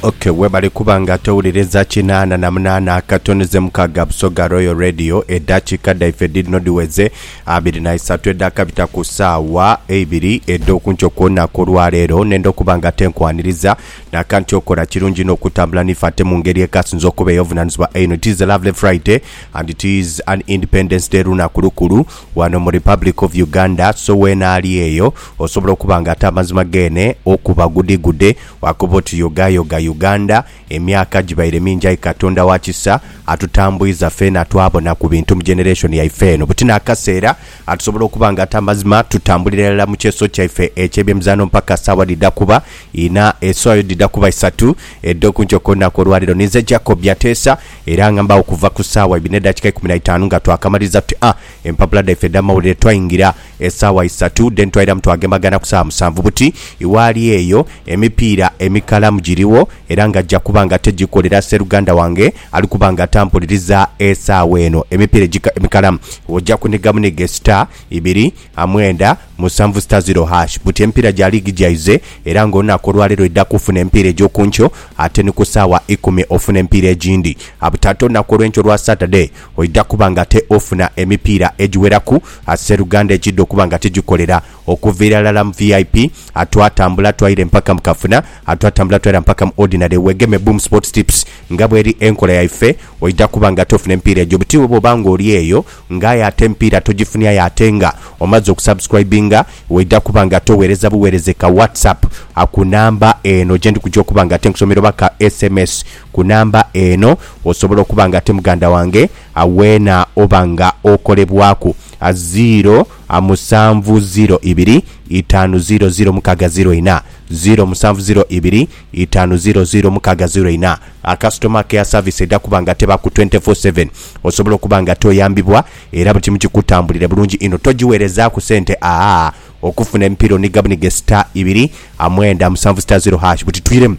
Okay, webale kuba nga towuliriza kinaana na munaana akatonoze mukaaga Busoga Royal Radio eddakiika dhaife dhirino dhiweze abiri na isatu edhakabita ku saawa eibiri edh'okunkyo kw'olunaku olwaleero nenda okuba nga tenkwaniriza nakanti okola kirungi inho okutambula nife ate mu ngeri ekasinza okuba ey'obuvunaanyizibwa einho it is a lovely Friday and it is an Independence Day lunaku lukulu Wano mu Republic of Uganda so weena ali eyo osobola okuba nga ate amazima geene okuba gudhigudhe wakoba oti yogayoga Uganda emyaka gibaire mingi aye Katonda wa kisa atutambwiza feena twabona ku bintu mu generation yaife eno buti n'akaseera atusobola okuba nga ate amazima tutambulira irala mu kyeso kyaife eky'ebyemizaano mpaka saawa dhidha kuba ina esaawa yo dhidha kuba isatu edh'okunkyo kw'olunaku olwaleero. Ninze Jacob Byateesa. Era nga mbagho kuva ku saawa ibiri n'edakika ikumi na itaanu nga twakamaliriza tuti a empapula dhaife edh'amawulire, twaingira esaawa isatu then twairamu twagembagana ku saawa musanvu buti iwaali eyo. Emipiira emikalamu giriwo era nga gya kuba nga tegikolera seruganda wange ali kuba nga tampuliriza esaawa eno. Emipiira emikalamu oja kuniga buniga esita ibiri, mwenda, musanvu sita ziro hash buti emipiira gya liigi gyaize era nga olunaku olwaleero edha kufuna emipiira egy'okunkyo ate ni ku saawa ikumi ofuna emipiira egindi abute ate olunaku olw'enkyo olwa Saturday oidha kuba nga ate ofuna emipiira egiweraku Sseruganda ekiidha okuba nga tigikolera okuviira lala mu vip atwatambula twaira empaka mu kafuna atwatambula twaira mpaka mu ordinary wegeme Boom Sports Tips nga bweri enkola yaife oidha kuba nga ate ofuna emipiira egyo buti iwe bwoba nga oli eyo Nga aye ate empiira tojifunia aye ate nga omaze okusubscribinga waidha kuba nga towereza buwereze ka WhatsApp ku number eno gyendi kuja okuba nga ate nkusomera oba ka sms ku number eno osobole okuba nga ate muganda wange weena oba nga okolebwaku ziro musanvu ziro ibiri itaanu ziro ziro mukaaga ziro ina ziro musanvu ziro ibiri itaanu ziro ziro mukaaga ziro ina. A Customer Care Service edha kuba nga teba ku twenty four seven. Osobola okuba nga toyambibwa era buli kimu kikutambulire bulungi inho. Togiwerezaaku sente aah. Okufuna emipiira oniga bunige star ibiri a mwenda musanvu star zero hash. Butitwiremu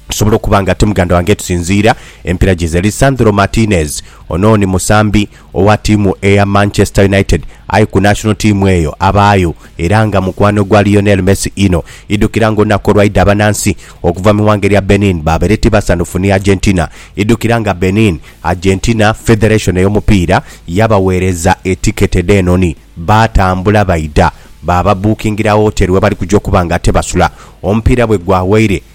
tusobola okuba nga ti muganda wange tusinziira emipiira gyize. Lisandro Martinez, Ono ni musambi. Owa tiimu eya Manchester United aye ku national tiimu eyo abaayo era nga mukwano gwa Lionel Messi inho. Idhukira nga olunaku olwaidha abanansi okuva mu ighanga erya Benin baabaire tibasanhufu ni Argentina. Idhukira nga Benin, Argentina Federation ey'omupiira yabaweereza etiketi dh'enhonhi baatambula baidha baababuukingirawo woteri webali kuja okuba nga ate basula. Omupiira bwe gwawaire